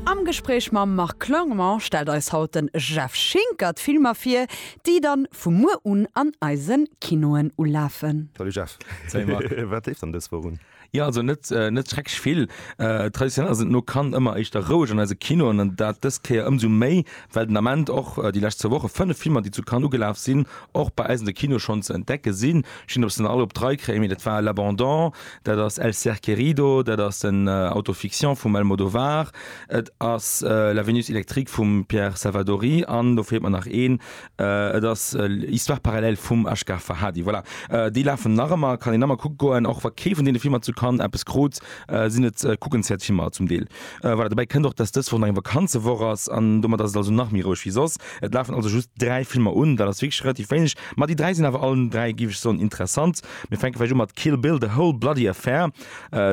Am Gespréich mam Marc Clement stellt eis haut den Jeff Schinker d'Filmer vir, déi dann vu muer un an eisen Kinoen ulafen. Salut Jeff. Salut Marc. Wat leeft dann dës Woch un? Jo, also net net schrecklech vill. Traditionell ass et no Cannes ëmmer éischter roueg an eise Kinoen an dat dës Kéier ëmsou méi, well den Ament och déi lescht zwou Woche 5 Filmer, déi zu Cannes ugelaf sinn, och bei eis an de Kinoe schonn ze entdecke sinn. Ech weess net, ob ech se nach all op d'Rei kréien, mee dat war L'Abandon, Dat ass El ser querido, dat ass den Auto-fiction vum Almodovar, et ass La Vénus électrique vum Pierre Salvadori an do feelt mer nach een, et ass Histoires parallèles vum Asghar Farhadi. Voilà, déi lafen nach ëmmer, kann een nach mol kucke goen. Och wa kee vun deene Filmer zu Cannes eppes krut, sinn et kuckenswäert Filmer zum Deel. Voilà, dobäi kënnt och, dass dës Woch nach eng Vakanzewoch ass an domat ass et also nach méi roueg wéi soss. Et lafen also just dräi Filmer un, dat ass wierklech relativ wéineg, ma déi dräi sinn awer allen dräi, géif ech soen, interessant. Mir fänke vläicht u mat Kill Bill, The Whole Bloody Affair.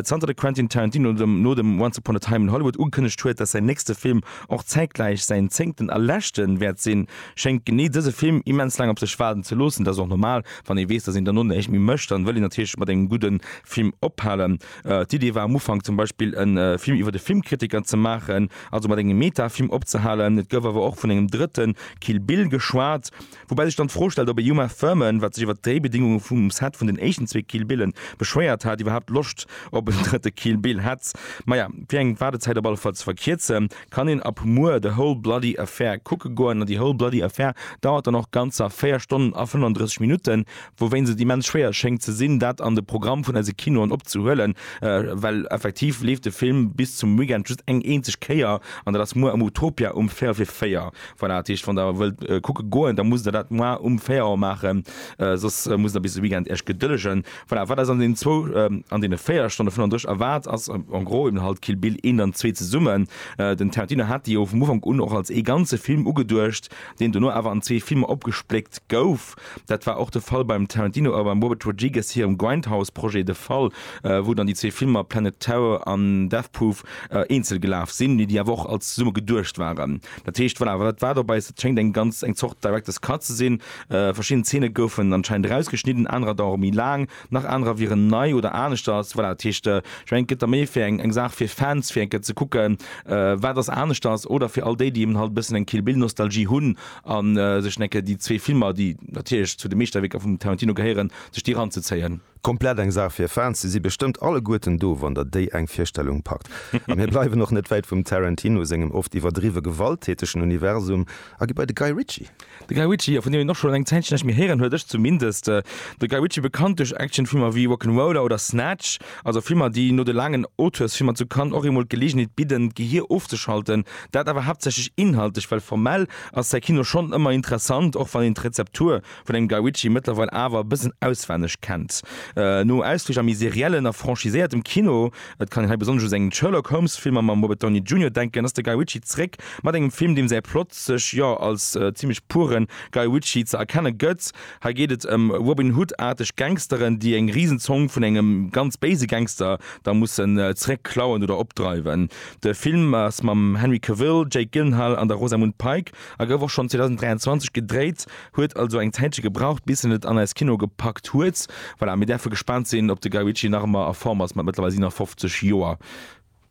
Zanter de Quentin Tarantino no dem Once Upon a Time in Hollywood ugekënnegt huet, datt säin nächste Film och zäitgläich säin zéngten a leschte wäert sinn, schéngt genee dëse Film immens laang op sech waarden ze loossen. Dat ass och normal, wann ee weess, datt een dono näischt méi mécht, dann wëll een natierlech mat engem gudde Film ophalen. D'Idee war am Ufank zum Beispill e Film iwwer e Filmkritiker ze maachen, also mat engem Meta-Film opzehalen. Et gouf awer och vun engem drëtte Kill Bill geschwat. Woubäi sech dann d'Fro stellt, ob e Uma Thurman, wat sech iwwer d'Dréibedingunge vum Set vun den éischten zwee Kill Billen beschwéiert hat, iwwerhaapt Loscht op en drëtte Kill Bill hätt. Maja, fir eng Waardezäit op alle Fall ze verkierzen, kann een ab muer The Whole Bloody Affair kucke goen. An The Whole Bloody Affair dauert dann och ganzer 4 Stonnen a 35 Minutten, wouwéinst et immens schwéier schéngt ze sinn, dat an de Programm vun eise Kinoen opzehuelen, well effektiv leeft de Film bis zum Weekend just eng eenzeg Kéier, an dat ass muer am Utopia um Véierel vir 4. Voilà, dat heescht, wann Der wëllt kucke goen, da musst Der dat moar um 4 Auer maachen, soss musst Der bis de Weekend Iech gedëllegen. Voilà, wat eis an deenen zwou, an deene 4 Stonne 35 erwaart, ass en gros eben halt Kill Bill 1 an 2 zesummen. Den Tarantino hat déi jo vum Ufank un och als ee ganze Film ugeduecht, deen dono awer an zwee Filmer opgespléckt gouf. Dat war och de Fall beim Tarantino a beim Robert Rodriguez hirem Grindhouse-Projet de Fall, wou dann déi zwee Filmer Planet Terror an Death Proof eenzel gelaf sinn, mee déi awer och als zesumme geduecht waren. Dat heescht, voilà, wat war dobäi? Et schéngt eng ganz eng Zort Director's Cut ze sinn. Verschidden Zeene goufen anscheinend erausgeschnidden, anerer dauere méi laang, nach anerer wieren nei oder aneschters. Voilà, dat heescht, ech mengen, et gëtt da méi fir eng eng Saach fir Fans, fir eng Kéier ze kucken, wat ass aneschters, oder fir all déi, déi eben halt e bëssen eng Kill Bill-Nostalgie hunn. a sech en Ecke déi zwee Filmer, déi natierlech zu de Meeschterwierker vum Tarantino gehéieren, sech déi eranzezéien. Komplett eng Saach fir Fans. Se si bestëmmt alleguerten do, wann der déi eng Virstellung packt. A mir bleiwen och net wäit vum Tarantino sengem oft iwwerdriwwe gewalttätegen Universum a gi bei de Guy Ritchie. De Guy Ritchie, jo, vun deem een och schonn eng Zäitchen näischt méi héieren huet, ech zumindest. De Guy Ritchie, bekannt duerch Actionfilmer wéi Rock'n'Roller oder Snatch, Also Filmer, déi no de laangen Auteursfilmer zu Cannes och eemol d'Geleegenheet bidden, d'Gehier ofzeschalten. Dat awer haaptsächlech inhaltlech, well formell ass säi Kino schonn ëmmer interessant, och wann een d'Rezeptur vun engem Guy Ritchie mëttlerweil awer e bëssen auswenneg kennt. No Ausflich a méi seriellen a franchiséiertem Kino, et kann een hei besonnesch u seng Sherlock Holmes-Filmer mam Robert Downey Junior denken, ass de Guy Ritchie zréck mat engem Film, deem säi Plot sech, jo, als zimlech puren Guy Ritchie ze erkenne gëtt. Hei geet et ëm Robin Hood-aarteg Gangsteren, déi eng Risenzong vun engem ganz béise Gangster da mussen zeréck klauen oder opdreiwen. De Film ass mam Henry Cavill, Jake Gyllenhaal an der Rosamund Pike a gouf och schonn 2023 gedréit, huet also eng Zäitche gebraucht, bis en et an eis Kinoe gepackt huet. Voilà, mir däerfe gespaant sinn, ob de Guy Ritchie nach ëmmer a Form ass mat mëttlerweil 57 Joer.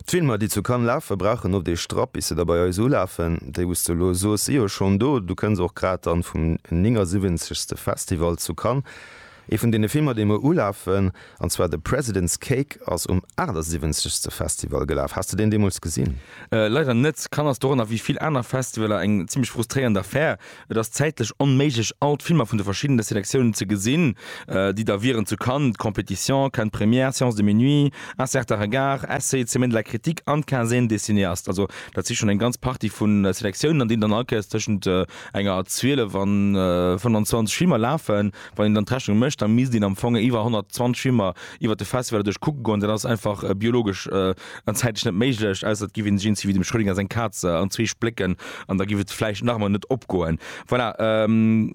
D'Filmer, déi zu Cannes lafen, brauchen oft ee Strapp, bis se da bei eis ulafen. Déi, wou s de elo soos, si jo schonn do. Du kënns och grad dann vum 79. Festival zu Cannes. Ee vun deene Filmer, dee muer ulafen, an zwar The President's Cake, ass um 78. Festival gelaf. Has de deen deemools gesinn? Leider net. Cannes ass doranner, wéi vill aner Festivaler, eng zimlech frustréierend Affär. Et ass zäitlech onméiglech all d'Filmer vun de verschiddene Selektiounen ze gesinn, déi da wieren, zu Cannes d'Compétition, Cannes d'Première, Séance de minuit, Un certain regard, Essai, Semaine de la critique an d'Quinzaine des cinéastes. Also dat si schonn eng ganz Partie vu Selektiounen, an deenen dann all Kéiers tëschent enger 12 an 25 Filmer lafen. Wann een dann d'Rechnung mécht, da misst een am Fong iwwer 120 Schwimmer iwwert de Festival duerch kucke goen. Dat ass einfach biologesch an zäitlech net méiglech, ausser et giff een sech eens wéi dem Schrödinger seng Kaz an zwee splécken, an da giff et vläicht nach emol net opgoen. Voilà,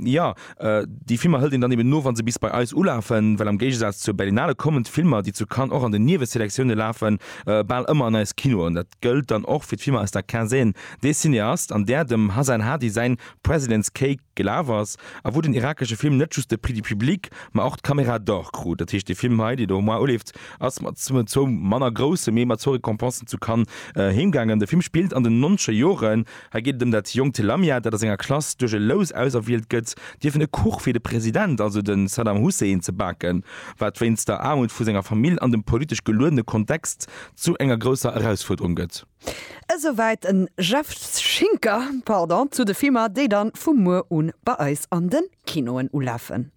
jo, déi Filmer hëlt een dann eben no, wa se bis bei eis ulafen, well am Géigesaz zur Berlinale kommen d'Filmer, déi zu Cannes och an den Nieweselektiounen lafen, bal ëmmer an eis Kinoen. Dat gëllt dann och fir d'Filmer aus der Quinzaine des cinéastes, an där dem Hasan Hadi säin President's Cake, Gelaf ass, a wou den irakesche Film net just de Prix du public, ma och d'Caméra d'Or krut. Dat heescht, dee Film hei, deen do um Mois uleeft, ass mat zwou manner grousse, mee mat zwou Récompensen zu Cannes heemgaangen. De Film spillt an den nonche Joren. Hei geet et ëm dat jonkt Lamia, dat a senger Klass duerch e Lous auserwielt gëtt, dierfen e Kuch fir de President, also de Saddam Hussein, ze baken, wat wéinst der Aarmut vu senger Famill an dem politesch geluedene Kontext zu enger grousser Erausfuerderung gëtt. Esouwäit den Jeff Schinker, pardon, zu de Filmer, déi dann vu muer un bei eis an den Kinoen ulafen.